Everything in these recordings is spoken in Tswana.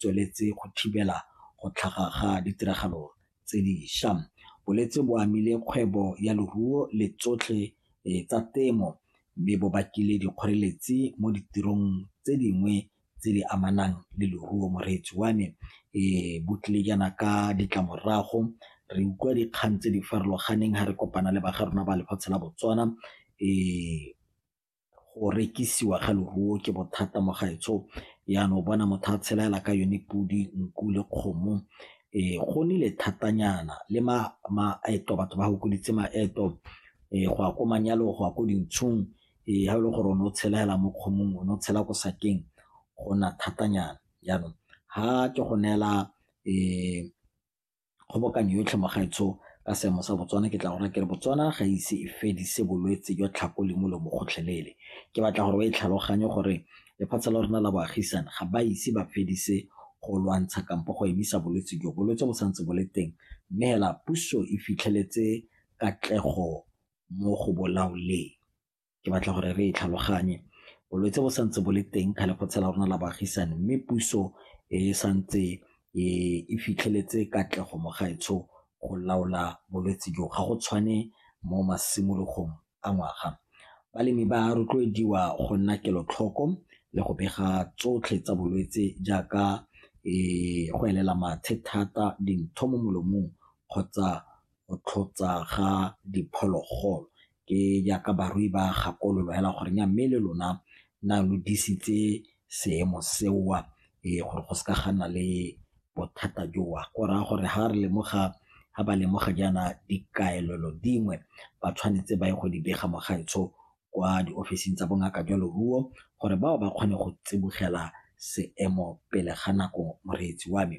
tsweletse go thibela go tlhaga ga ditiragalo tse diša. Bolwetse bo amile kgwebo ya leruo le tsotlhe tsa temo mme bo bakile dikgoreletsi mo ditirong tse dingwe tse di amanang le leruo. Moreetsi wa me bo tlile jaana ka ditlamorago, re utlwa dikgang tse di farologaneng ha re kopana le ba ga rona ba lefatshe la Botswana . go rekisiwa ga leruo ke bothata mo gaetsho jaanong o bona motho a tshela fela ka yone podi, nku le kgomo. Go nnile thatanyana le maeto batho ba fokoditse maeto go ya ko manyalong, go ya ko dinthong ga e le gore o ne o tshela fela mo kgomong, o ne o tshela ko sakeng go nna thatanyana jaanong ga ke go neela . kgobokanyo yotlhe mo gaetsho ka seemo sa Botswana ke tla go raya ke re Botswana ga ise e fedise bolwetse jwa tlhako le molomo gotlhelele. Ke batla gore ba e tlhaloganye gore lefatshe la rona la boagisane ga ba ise ba fedise go lwantsha kampo go emisa bolwetse jo. Bolwetse bo santse bo le teng mme hela puso e fitlheletse katlego mo go bolaoleng. ke batla gore re e tlhaloganye. Bolwetse bo santse bo le teng kgale go tshela rona la baagisane mme puso e santse e fitlheletse katlego mo gaetsho go laola bolwetse jo, ga go tshwane mo masimologong a ngwaga. Balemi ba rotloediwa go nna kelotlhoko le go bega tsotlhe tsa bolwetse jaaka go elela mathe thata, dintho mo molomong kgotsa go tlhotsa ga diphologolo ke jaaka barui ba gakololo hela gore nya mme le lona na lo disitse seemo seo ee gore go seka ga nna le bothata joo go raya gore ha re lemoga ha ba lemoga jaana dikaelelo dingwe ba tshwanetse ba ye go di bega mo gaetsho kwa di ofising tsa bongaka jwa leruo gore bao ba kgone go tsibogela seemo pele ga nako moreetsi wa me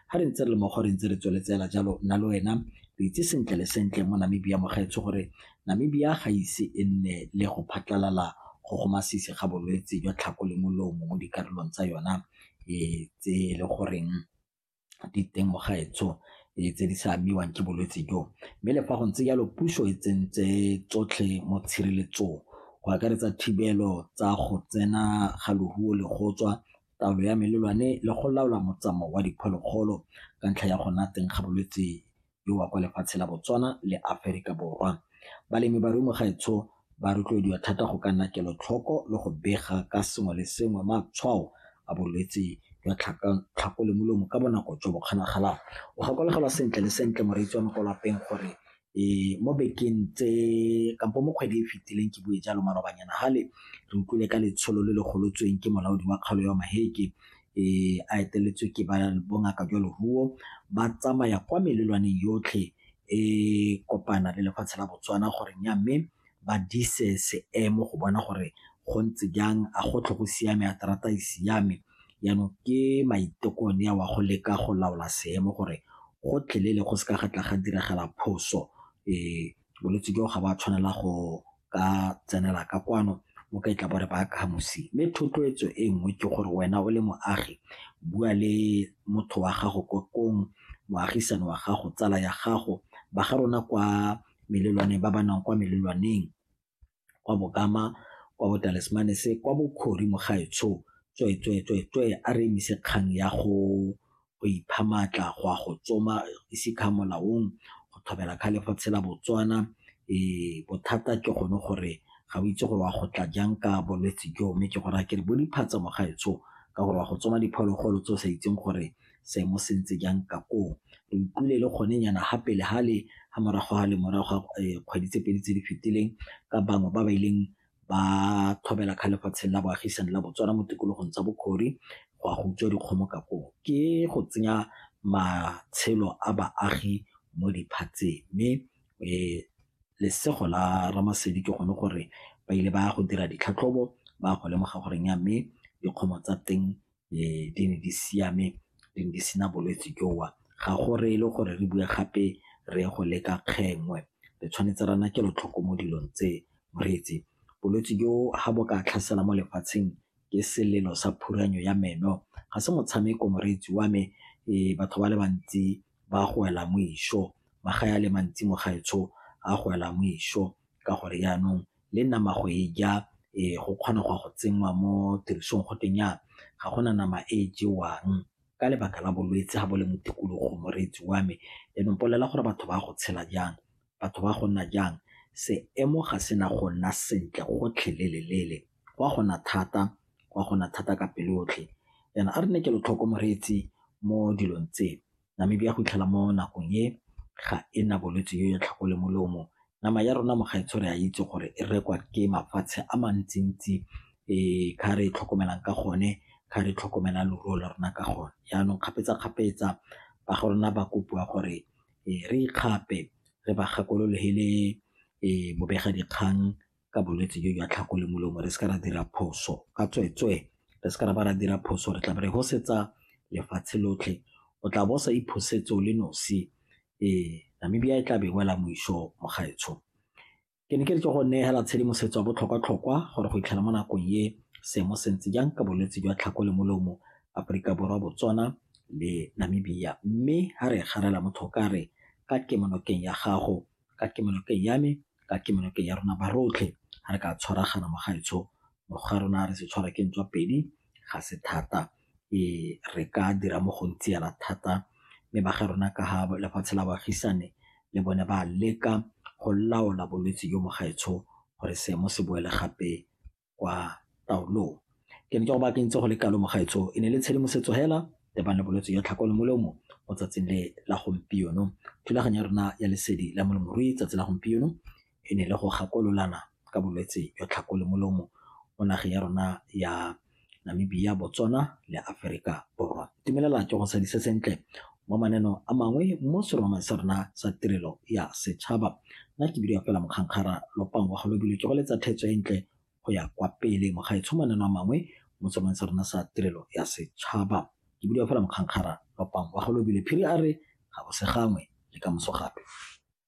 ga re ntse re le mo gore ntse re tsweletsela jalo nna le wena re itse sentle le sentle mo namibia mogaetsho gore namibia ga ise e nne le go phatlalala go go masisi ga bolwetse jwa tlhako le molomo mo dikarolong tsa yona e tse e le goreng diteng mo gaetsho tse di sa amiwang ke bolwetse jo. Mme le fa go ntse jalo puso e tsentse tsotlhe mo tshireletsong go akaretsa thibelo tsa go tsena ga loruo le go tswa, taolo ya melelwane le go laola motsamao wa diphologolo ka ntlha ya go nna teng ga bolwetse yo wa kwa lefatshe la Botswana le Aferika Borwa. Balemi ba Rumugaetsho ba rotloediwa thata go ka nna kelotlhoko le go bega ka sengwe le sengwe matshwao a bolwetse jwa tlhako le molomo ka bonako jo bo kgonagalang. O gakologelwa sentle le sentle moreetsi wa mo kwa lapeng gore mo bekeng tse kampo mo kgwedi e e fetileng ke bue jalo malobanyana gale re utlwile ka letsholo le le golotsweng ke molaodi wa kgaolo ya Maheke e a eteletswe ke ba bongaka jwa leruo ba tsamaya kwa melelwaneng yotlhe e kopana le lefatshe la botswana gore nya mme ba dise seemo go bona gore go ntse jang a go tlho go siame a terata e siame jaanong ke maiteko ne wa go leka go laola seemo gore go tlhelele go seka ga tla ga diragala phoso um bolwetse jo ga ba tshwanela go ka tsenela ka kwano mo ka itla bore ba ka mosi mme thotloetso e nngwe ke gore wena o le moagi bua le motho wa gago ko kong moagisane wa gago tsala ya gago ba ga rona kwa melelwane ba ba nang kwa melelwaneng kwa Bokama, kwa Botalismanese, kwa Bokhori mogaetsho, tswee, tswee, tswee, tswee, a re emise kgang ya go go ipha maatla, go a go tsoma, ise kha molaong, go thobela kha le go tshela Botswana. Ee, bothata ke gone gore ga o itse gore wa go tla jang ka bolwetse joo, mme ke go raya ke re bo diphatsa mogaetsho ka gore wa go tsoma diphologolo tse o sa itseng gore seemo se ntse jang ka koo. Re utlwile le gone nyana ga pele ga le ga morago ga le morago ga kgwedi tse pedi tse di fetileng ka bangwe ba ba ileng ba tlhobela kga lefatsheng la boagisane la Botswana mo tikologong tsa Bokhori go a go utswa dikgomo ka koo. Ke go tsenya matshelo a baagi mo diphatseng mme lesego la Ramasedi ke gone gore ba ile ba go dira ditlhatlhobo ba go lemoga gore mme dikgomo tsa teng di ne di siame, di ne di sena bolwetse jo. Ga go reye e le gore re bue gape re ye go leka kgengwe, re tshwanetse re nna kelotlhoko mo dilong tse. Moreetsi, bolwetse jo ga bo ka tlhasela mo lefatsheng ke selelo sa phuranyo ya meno, ga se motshameko moreetsi wa me. Batho ba le bantsi ba go wela mo išo, magae a le mantsi mo gaetsho a go wela mo išo ka gore yanong le nama go e ja go kgona go ya go tsenngwa mo tirisong go tweng jaana ga gona nama e jewang ka lebaka la bolwetse ga bo le mo tikologong moreetsi wa me, jaanong mpolelela gore batho ba go tshela jang, batho ba go nna jang, seemo ga se na go nna sentle gotlhelele go a go na thata, go a go na thata ka pelo yotlhe jaana a re nne kelotlhoko moreetsi mo dilong tse, Namibia go fitlhela mo nakong e ga e na bolwetse yo ya tlhako le molomo. Nama ya rona mo gaetsho re a itse gore e rekwa ke mafatshe a mantsi-ntsi ka re e tlhokomelang ka gone, ka re tlhokomela leruo la rona ka gone. Jaanong kgapetsa-kgapetsa ba ga rona ba kopiwa gore re ikgape re ba gakololo he le bobega dikgang ka bolwetse jo jwa tlhako le molomo re seke ra dira phoso ka tsweetswee re seke ra ba ra dira phoso re tla be re hosetsa lefatshe lotlhe o tla bo o sa iphosetse o le nosi ee Namibia e tla be e wela moiso mogaetsho ke ne ke re ke go neela tshedimosetso ya botlhokwa-tlhokwa gore go itlhela mo nakong e seemo se ntse jang ka bolwetse jwa tlhako le molomo Aforika Borwa Botswana le Namibia mme ha re garela motho ka re ka kemonokeng ya gago ka kemonokeng ya me, ka kemonokeng ya rona ba rotlhe ga re ka tshwaragana mo gaetsho mo ga rona re se tshwara ke ntswa pedi ga se thata re ka dira mo go ntse yana thata mme ba ga rona ka ga lefatshe la baagisane le bone ba leka go laola bolwetse jo mo gaetsho gore seemo se boele gape kwa taolong. Ke ne ke go baakantse go le kalo mogaetsho e ne le tshedimosetso hela le bana bolwetse ya tlhako le molomo mo tsatsing le la gompieno. Thulaganyo ya rona ya lesedi la molemirui tsatsi la gompieno e ne le go gakololana ka bolwetse jwa tlhako le molomo mo nageng ya rona ya Namibia, Botswana le Aferika Borwa. itumelela ke go sadise sentle mo maneno a mangwe mo seromamang sa rona sa tirelo ya setšhaba nna ke bidio fela mokgankgara lopang wa galobile ke go letsa thetso e ntle go ya kwa pele mo gaetsho maneno a mangwe mo seromang sa rona sa tirelo ya setšhaba ke bidio fela mokgankgara lopang wa galobile phiri a re ga go se gangwe le ka moso gape